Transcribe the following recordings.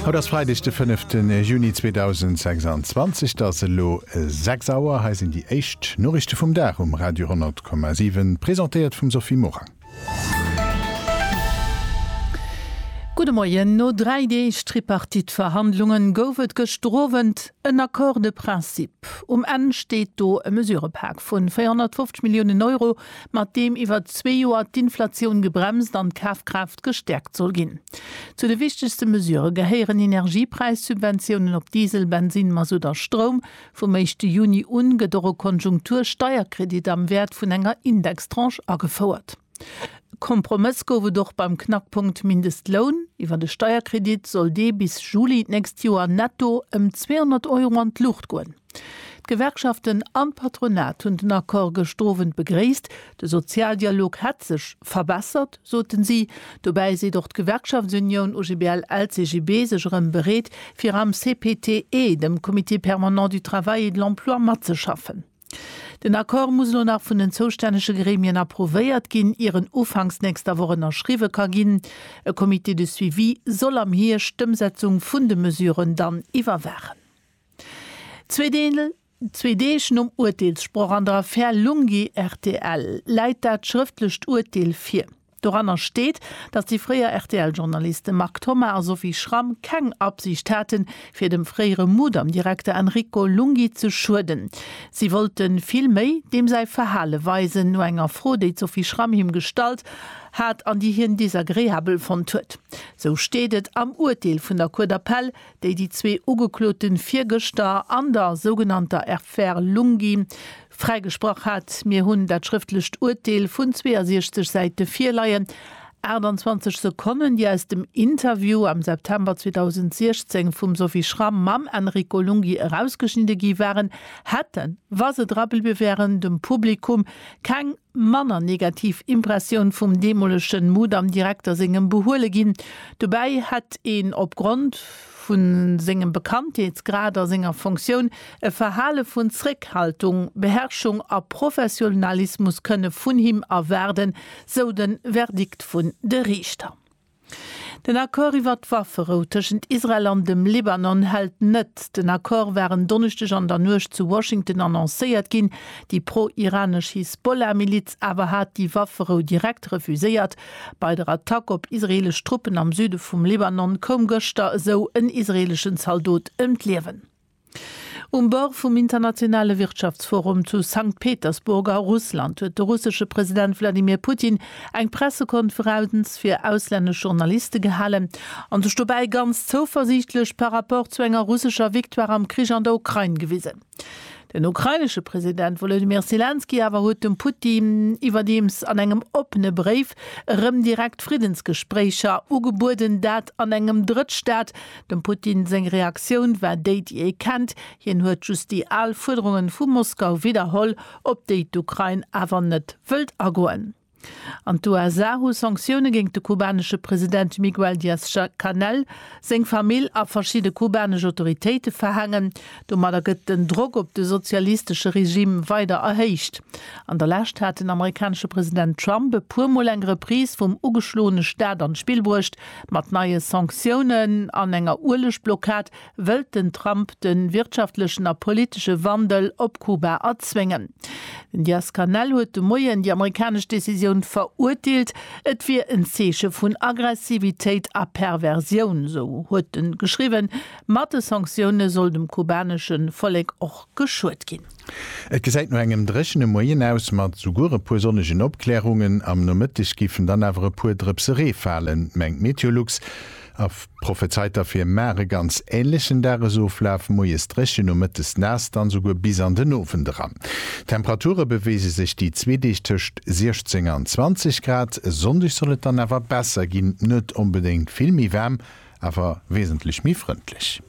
Haut ass Freideg de 5 ten Juni 2026, et ass elo 6 Auer. Hei sinn déi éischt Noriichte vum Dag um Radio 10,7, presentéiert vum Sophie Morang. Gudde Moien, No dräi Deeg Tripartite-Verhandlunge gouf et gëschter Owend en Accord de principe. Um Enn steet do e Mesurëpak vun 450 Milliounen Euro, mat deem iwwer zwee Joer d'Inflatioun gebremst an d'Kafkraaft gestäerkt soll ginn. Zu de wichtegste Mesure gehéieren Energiepräissubventiounen op Diesel, Bensin, Masutt a Stroum. Vum éischte Juni u gëtt och e Konjunktursteierkredit am Wäert vun enger Indextranche agefouert. E Kompromëss gouf et och beim Knackpunkt Mindestloun. Iwwer e Steierkredit soll dee bis Juli d'nächst Joer netto ëm 200 Euro an d'Luucht goen. D'Gewerkschaften an d'Patronat hunn den Accord gëscht Owend begréisst. De Sozialdialog hätt sech verbessert, soten si. Dobäi seet och d'Gewerkschaftsunioun OGBL-LCGB sech erëm bereet, fir am CPTE, dem Comité permanent du travail et de l'emploi, matzeschaffen. Den Accord muss elo nach vun den zoustännege Gremien approuvéiert ginn, ier en ufanks nächster Woch ënnerschriwwe ka ginn. E Comité de suivi soll am Hierscht d'Ëmsetzung vun de Mesuren dann iwwerwaachen. Zwee Deeg nom Urteelssproch an der Affär Lunghi rtl läit dat schrëftlecht Urteel vir. Doranner steet, datt déi fréier RTL-Journaliste Marc Thoma a Sophie Schramm keng Absicht haten, fir dem fréiere Mudam-Direkter Enrico Lunghi ze schueden. Si wollte vill méi deem säi Verhale weisen. No enger Fro, déi d'Sophie Schramm him gestallt hat an déi hien desagreabel fonnt huet, sou steet et am Urteel vun der Cour d'appel, déi déi zwee Ugeklote virgëschter an der sougenannter Affaire Lunghi fräigesprach hat. Mir hunn dat schrëftlecht Urteel vun 62 Säite virleien, 28 Sekonnen, déi aus dem Interview am September 2016 vum Sophie Schramm mam Enrico Lunghi erausgeschnidde gi waren, hätten, wa se drabeliwwe wären, dem Publikum keng manner negativ Impressioun vum deemolegen Mudam-Direkter sengem behuele ginn. Dobäi hätt een opgrond vu sengem Bekanntheetsgrad a senger Fonctioun e Verhale vun Zréckhaltung, Beherrschung a Professionalismus kënne vun him erwaarden, sou de Verdikt vun de Riichter. Den Accord iwwert d'Wafferou tëschent Israel an dem Libanon hält net. Den Accord war en Donneschdeg an der Nuecht zu Washington annoncéiert ginn. Déi pro-iranesch Hisbollah-Miliz awer hat déi Wafferou direkt refuséiert. Bei der Attack op israeelesch Truppen am Süde vum Libanon koum gëschter esou en israeeleschen Zaldot ëm d'Liewen. Um Bord vum internationale Wirtschaftsforum zu Sankt Petersburg a Russland huet de russesche President Wladimir Putin eng Pressekonferenz fir auslännesch Journaliste gehalen a sech dobäi ganz zouversiichtlech par rapport zu enger russescher Victoire am Krich an der Ukrain gewisen. Den ukrainesche President Wolodymyr Selenskyj awer huet dem Putin iwwerdeems an engem oppene Bréif erëm direkt Friddensgespréicher ugebueden, dat an engem Drëttstaat Dem Putin seng Reaktioun war déi, déi ee kennt, hien huet just déi al Fuerderungen vu Moskau widderholl, op déi d'Ukrain awer net wëllt agoen. An d'USA hu Sanktioune géingt de kubanesche President Miguel Diaz-Canel, seng Famill a verschidde kubanesch Autoritéite verhaangen. Domadder gëtt den Drock op de sozialistesche Regime weider erhéicht. An der Lescht hat den amerikanesche President Trump e puer Mol eng Reprise vum ugeschloene Staat an d'Spill bruecht, Mat neie Sanctiounen an enger Uelegblockad wëllt den Trump de wirtschaftlechen a politesche Wandel op Kuba erzwéngen. Den Diaz-Canel huet de Moien déi amerikanesch Decisioun verurteelt. Et wier en Zeeche vun Aggressivitéit a Perversioun, sou huet e geschriwwen. Mat de Sanktioune soll dem kubanesche Vollek och geschuet ginn. Et gesäit no engem dréchene Moien aus, mat souguer e puer sonnegen Opklärungen. Am Nomëtteg géifen dann awer e puer Drëpse Ree falen, mengt Meteolux a prophezeit derfir mar e ganz änlechen Dagesoflaf, Moies dréchen, nomëttes naass, dann souguer bis an den Owend eran. D'Temperature beweege sech déi zwee Deeg tëscht 16 an 20 Grad, e Sonndeg soll et dann awer besser ginn, net onbedéngt vill méi waarm, Awer wesentlech méi frëndlech.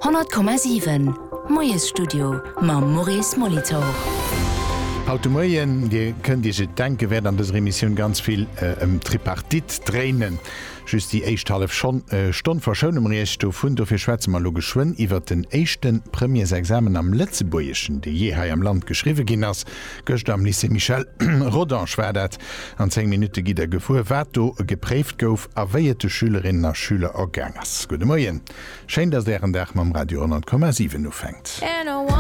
100,7, Moiesstudio mam Maurice Molitor. Haut de Moien, Dir kënnt Iech et denken, wäert an dëser Emissioun ganz vill ëm d'Tripartite dréinen. Just déi éischt hallef Schonn, Stonn verschoune mer Iech dovun. Dofir schwätze mer elo geschwënn iwwert den éischte Premièresexamen am Lëtzebuergeschen, dee jee hei am Land geschriwwe ginn ass. Gëschter am Lycée Michel Rodange war dat. An 10 Minutte gitt der gefuer, wat do gepréift gouf a wéi et de Schülerinnen a Schüler ergaang ass. Gudde Moien, schéin, datt Ären Dag mam Radio 10,7 ufänkt.